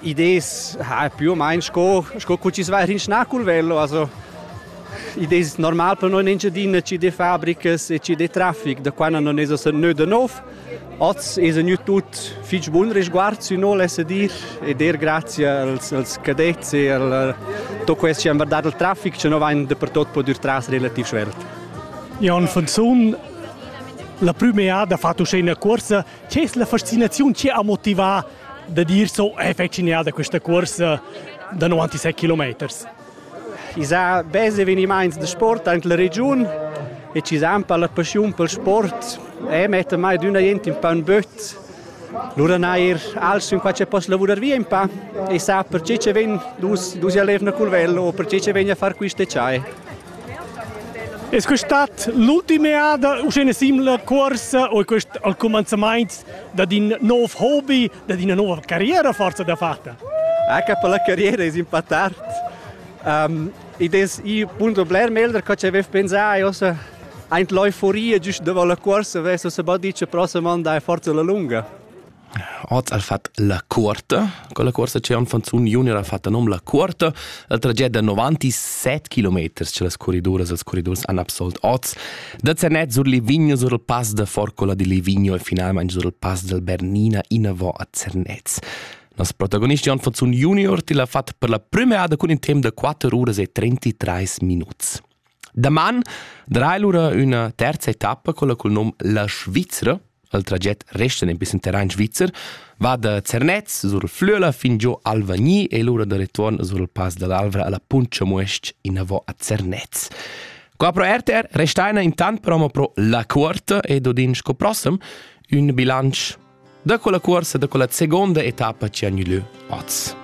Idees ha più o meno sco, sco cu ci vai in schna col velo, also idees normal per noi in Engiadina ci de fabricas e ci de traffic, da quando non es a neu da nov. Oz es gnü tut fich bun risguard sü no, lesse dir, ed er grazie als, als cadets e al tot quest chi han guardat il traffic, che no vain dapertot pudür tras relativ svelt. Jan von Zun, la prüma da fat uschè üna cuorsa Che es la fascinaziun che ha motivà da dir so è affezionada questa cursa da 97 kilometers? I sa bes evenimaints da sport in la regiun e ci san per la passiun pel sport e metta mai d'una gente un po' un böt. Lura nair als in qua c'è post lavurar via un po' e sa perché ci ven dus dus jalevna col vello o perché ci ven a far queste ciai. Es quest'at l'ultima eada u scena simila cuorsa o è quest al cumanzamaint dad in nov hobby, dad ina nova carriera forza da fatta? Anche per la carriera es impattat. Um, id es i punto bler meglder co c'avev pensà e ossa aint l'euforia giüst davant la cuorsa vess ossa bod dit cha prossam an dai forza la lunga. Oz al fat la cuorta, con la cuorsa c'è un fanzun junior ha fatto nom la cuorta, la tragedia da 97 km che las corriduras e els corridors han absolt oz, da Zanet sur Livigno sur il pass da Forcola di Livigno e finalmente sur il pass del Bernina innavò a Zernez. Nos protagonist Jan Fanzun junior til ha fatto per la prima ada cun in tempo da 4 uras e 33 minuts. Daman drai lura üna terza etappa con la cul nom La Svizra. Il traget resta in pissen terrain svizzer, va da Zernez sur Flüela fin giò Alvagni e lura da retuorn sur il Pass dall'Alvra alla Puncha Muesc inavò a Zernez. Qua pro RTR restaina intant promo pro La Cuorta ed odin sco prossem ün bilancio da quella cuorsa da quella seconda etappa ci hanno lieu oz.